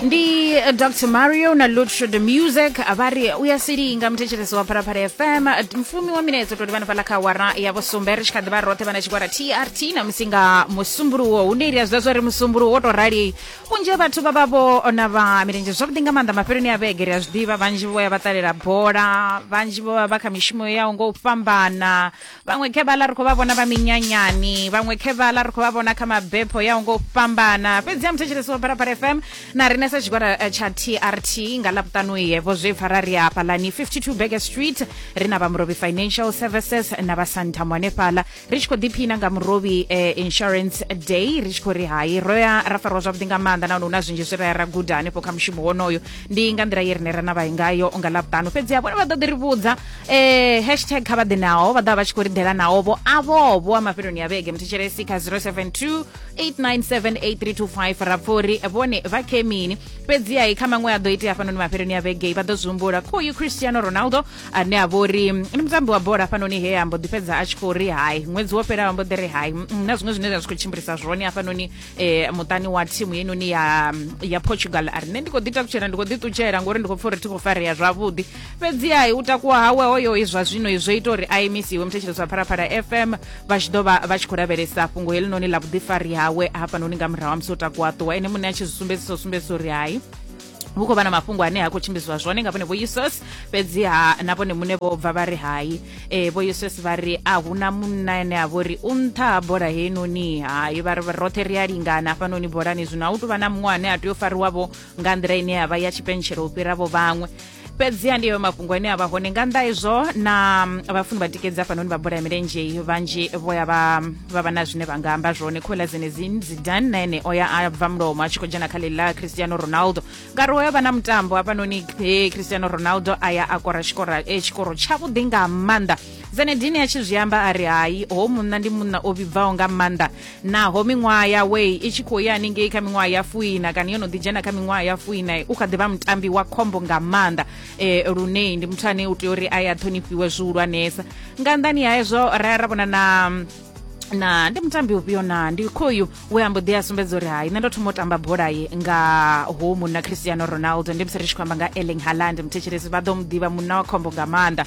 ndi eh, dr mario na lutro the music vha ri u ya silinga muthetshelesi wa phalaphala fm eh, mfumi wa minedzo toti vhana fhaḽa kha wara ya vhusumbe ri tshi kha ḓi vha roṱhe vhana tshigwada trt na musi nga musumbuluwo hu ndeili ya zwi zwa ri musumbuluwo wo tou rali vhunzhi ha vhathu vha vha vho ona vha milenzhe zwavhuḓi nga maanḓa mafheloni a vhege ri a zwi ḓivha vhanzhi vho ya vha ṱalela bola vhanzhi vho vha vha kha mishumo yao ngo u fhambana vhaṅwe khevhala ri khou vha vhona vha minyanyani vhaṅwe khevhala ri khou vha vhona kha mabepho ya ngo fhambana fhedzi ya muthetshelesi wa pharapara fm na rine sa tshigwada eh, tsha trt nga ḽapuṱanuye vho zwi pfa ra ri hafhalani 52 beger street ri na vha murobi financial services na vha santam hanefhala ri tshi khou ḓiphina nga murobi eh, insurance day ri tshi khou ri hai ro ya ra farwa zwavhuḓi nga maanḓa nahone hu na zwinzhi zwi ra ya ra guda hanefho kha mushumo wonoyo ndi nga nḓila ye rine ra na vhayi ngayo nga ḽapuṱanu fhedzi ha vhone vha ḓo ḓi ri vhudza eh hashtag kha vha ḓe naho vha ḓa vha tshi khou ri ḓela naho vho avho vho a mafheloni a vhege muthetshelesi kha 072 8978325 ra pfha uri vhone vha khe mini fhedzi ai kha maṅwe a ḓo itea hafhanoni mafheloni a vhege vha ḓo zwi humbula kha uyu cristiano ronaldo ane a vho ri ndi mutambi wa bola hafhanoni he a mbo ḓi fhedza a tshi khou ri hai ṅwedzi wo fhelaho mbo ḓi ri hai na zwiṅwe zwine zwa zwi khou tshimbilisa zwone hafhanoni eh, muṱani wa thimu yenoni ya, ya portugal a ri nṋe ndi khou ḓi takutshela ndi khou ḓi ṱutshela ngori ndi khou pfa uri thi khou farea zwavhuḓi fhedzi hai u takuwa hawe hoyo izwa zwino izwo ita uri a imisiwe muthetshelesi wa phalaphala fm vha tshi ḓo vha vha tshi khou lavhelesa fhungo helinoni ḽa vhuḓifari hawe hafhanoni nga murahu ha musi o takuwa ṱuwa ene muṋe a tshi zwi sumbedzisa u sumbedzisa uri hai hu khou vha na mafhungo ane ha khou tshimbidzwa zwone nga vhone vho uss fhedziha na vhone muṋe vho bva vha ri hai e, vho uss vha ri a hu na munna ene a vho ri u nṱha ha bola heinoni hai vha ri roṱhe ri a lingana hafhanoni bolani zwino a u tou vha na muṅwe ane a tea u fariwavho nga nḓila ine ya vha ya tshipentshelo u fhiravo vhaṅwe fhedziha ndi ayo mafhungo ane a vha hone nga nnḓa izwo na mm, vhafuni vha tikedzi hafhanoni vha bola ya milenzhe vhanzhi vho ya vha vha vha na zwine vha nga amba zwone khola zenezin zidan na ene o ya a bva mulomo a tshi khou dzhena kha ḽi ḽa cristiano ronaldo ngauri o ya vha na mutambo hafhanoni eh, cristiano ronaldo a ya a kora tshikora eh, tshikoro tshavhuḓi nga maanḓa zenedine a tshi zwi amba a ri hai ho munna ndi munna o vhibvaho nga maanḓa naho miṅwaha yawe i tshi khou ya haningei kha miṅwaha ya fuina kana yo no ḓi dzhena kha miṅwaha ya fuina u kha ḓivha mutambi wa khombo nga maanḓa e, lune ndi muthu ane u tea uri a ya ṱhonifhiwe zwihulwanesa nga nnḓani ha hezwo ra ya ra vhona na na ndi mutambi ufhio na ndi khoyu we ambo ḓi a sumbedza uri hai nṋe ndo thoma u tamba bola ye nga ho munna cristiano ronaldo ndi musi ri tshi khou amba nga erling haland muthetshelesi vha ḓo mu ḓivha munna wa khombo nga maanḓa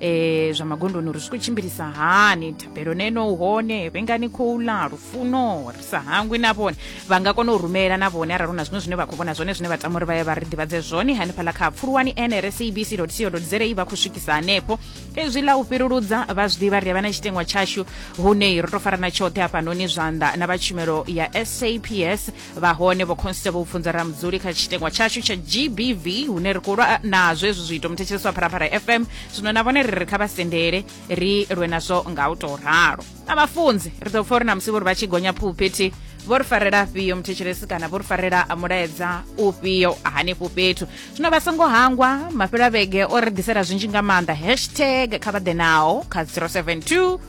e, zwa magondoni uri zwi khou tshimbilisa hani thabelo neno hone vhengani khou ḽa lufuno ri sa hangwi na vhone vha nga kona u rumela na vhone arali hu na zwiṅwe zwine vha khou vhona zwone zwine vha tama uri vha ye vha ri ḓivhadze zwone hanefhaḽa kha pfuluwani nrsabc co za vha khou swikisa hanefho ezwi ḽa u fhiruludza vha zwi ḓivha ri a vha na tshitengwa tshashu hune ro to farana tshoṱhe hafhanoni zwanḓa na vha tshumelo ya saps vha hone vho constable pfunza ramudzuli kha tshitengwa tshashu tsha gbv hune ri khou lwa nazwo hezwi zwiito muthetshelesi wa pharafara fm zwino na vhone ri ri kha vha sendele ri lwe nazwo nga u tou ralo na vhafunzi ri ḓo pfa uri na musi vho ri vha tshi gonya phuphethi vho ri farela afhio muthetshelesi kana vho ri farela mulaedza ufhio hanefho fhethu zwino vha songo hangwa mafhelo a vhege o ri ḓisela zwinzhi nga maanḓa hashtag kha vha ḓe nawo kha 072